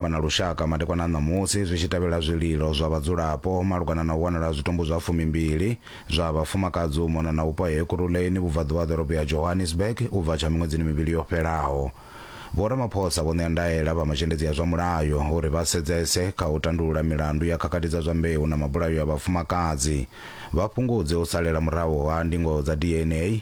vha na lushaka madekwana a ṋamusi zwi tshi tevhela zwililo zwa vhadzulapo malugana na u wanala ha zwitumbu zwa fumimbili zwa vhafumakadzi u mona na vhupo ha Ekurhuleni vhubvaḓuvha ha ḓorobo ya Johannesburg u bva tsha miṅwedzini mivhili yo fhelaho. Vho Ramaphosa vho ṋea ndaela vha mazhendedzi a zwa mulayo uri vha sedzese kha u tandulula milandu ya khakhathi dza zwa mbeu na mabulayo a vhafumakadzi, vha fhungudze u salela murahu ha ndingo dza DNA,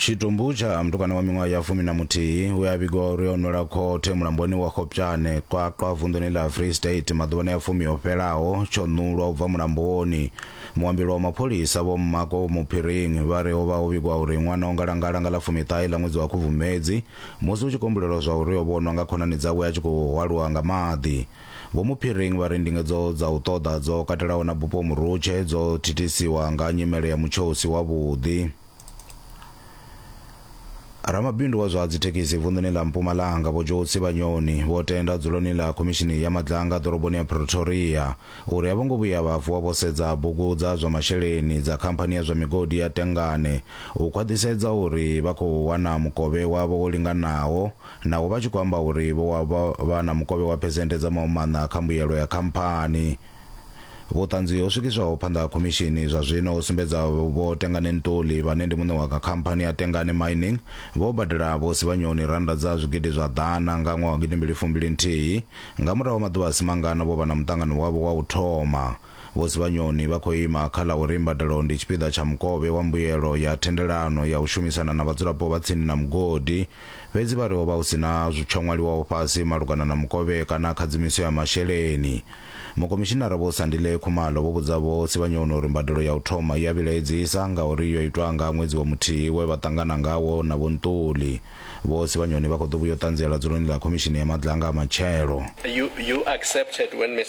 Tshitumbu tsha mutukana wa miṅwaha ya fumi na muthihi we a vhigiwa uri o nwela khothe mulamboni wa Khopjane, Qwaqwa, vunḓuni ḽa Free State maḓuvhani a fumi o fhelaho tsho ṋulwa u bva mulamboni. Muambeli wa mapholisa Vho Mmako Muphiring vha ri ho vha ho vhigwa uri ṅwana o ngalangala nga ḽa fumiṱahe ḽa ṅwedzi wa Khubvumedzi musi hu tshi kombulelwa zwa uri o vhonwa nga khonani dzawe a tshi khou hwaluwa nga maḓi. Vho Muphiring vha ri ndingedzo dza u ṱoḓa dzo katelaho na Bupo Murutshe dzo thithisiwa nga nyimele ya mutsho u si wavhuḓi. Ramabindu wa zwa dzithekhisi vunḓuni ḽa Mpumalanga Vho Joe Tsibanyoni vho tenda dzuloni ḽa khomishini ya madzanga ḓoroboni ya Pretoria uri a vho ngo vhuya vha vuwa vho sedza bugu dza zwa masheleni dza khamphani ya zwa migodi ya Tengane u khwaḓhisedza uri vha khou wana mukovhe wavho wo linganaho naho vha tshi khou amba uri vho wa vha na mukovhe wa phesenthe dza mahumaṋa kha mbuyelo ya khamphani Vhuṱanzi ho swikiswaho phanḓa ha khomishini zwa zwino ho sumbedza Vho Tengane Ntuli vhane ndi muṋe wa khamphani ya Tengane Mining vho badela Vho Sibanyoni rannda dza zwigidi zwa ḓana nga ṅwaha wa gidi mbili fumbili nthihi. Nga murahu ha maḓuvha a si mangana vho vha na muṱangano wavho wa u thoma. Vho Sibanyoni vha khou ima kha ḽa uri mbadelo ndi tshipiḓa tsha mukovhe wa mbuyelo ya thendelano ya u shumisana na vhadzulapo vha tsini na mugodi. Fhedzi vha ri ho vha hu si na tsho ṅwaliwaho fhasi malugana na mukovhe kana khadzimiso ya masheleni. Mukomishinara Vho Sandile Khumalo vho vhudza Vho Sibanyoni uri mbadelo ya u thoma i a vhilaedzisa ngauri yo itwa nga ṅwedzi wa muthihi we vha ṱangana ngawo na Vho Ntuli. Vho Sibanyoni vha khou ḓo vhuya u ṱanziela dzuloni ḽa Khomishini ya Maḓlanga matshelo.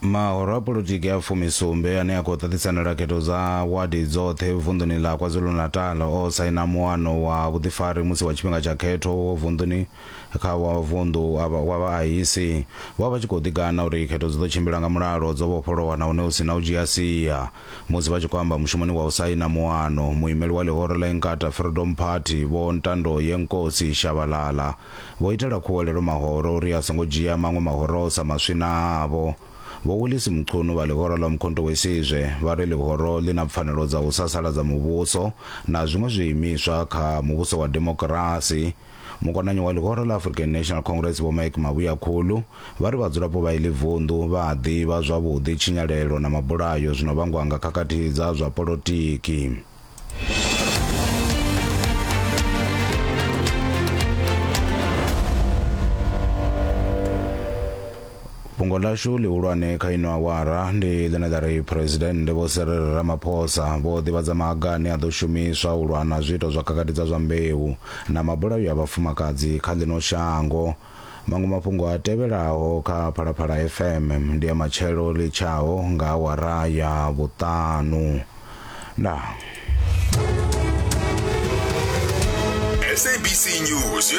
Mahoro a polotiki a fumisumbe ane a khou ṱaṱisanela khetho dza wadi dzoṱhe vunḓuni ḽa KwaZulu-Natal o saina muano wa vhuḓifari musi wa tshifhinga tsha khetho wo vunḓuni kha wa vunḓu wa vhaahisi vho vha vha tshi khou ḓigana uri khetho dzi ḓo tshimbila nga mulalo dzo vhofholowa nahone hu si na u dzhia sia. Musi vha tshi khou amba mushumoni wa u saina muano, muimeli wa ḽihoro ḽa Inkatha Freedom Party, Vho Ntandoyenkosi Shabalala, Vho itela khuwelelo mahoro uri a songo dzhia maṅwe mahoro o sa maswi na avho. Vho Willis Mchunu vha ḽihoro ḽa Umkhonto weSizwe vha ri ḽihoro ḽi na pfanelo dza u sasaladza muvhuso na zwiṅwe zwiimiswa kha muvhuso wa demokirasi. Mukonanyi wa ḽihoro ḽa African National Congress Vho Mike Mabuyakhulu vha ri vhadzulapo vha iḽi vunḓu vha a ḓivha zwavhuḓi tshinyalelo na mabulayo zwi no vhangwa nga khakhathi dza zwa polotiki. fhungo ḽashu ḽihulwane kha ino awara ndi ḽine ḽa ri phuresidennde vho serere ramaphosa vho ḓivhadza maga ane a ḓo shumiswa u lwa na zwiito zwa khakhathi dza zwa mbeu na mabulayo a vhafumakadzi kha ḽino shango Maṅwe mafhungo a tevhelaho kha Phalaphala FM ndi a matshelo ḽi tshaho nga awara ya vhuṱanu. Ndaa. SABC News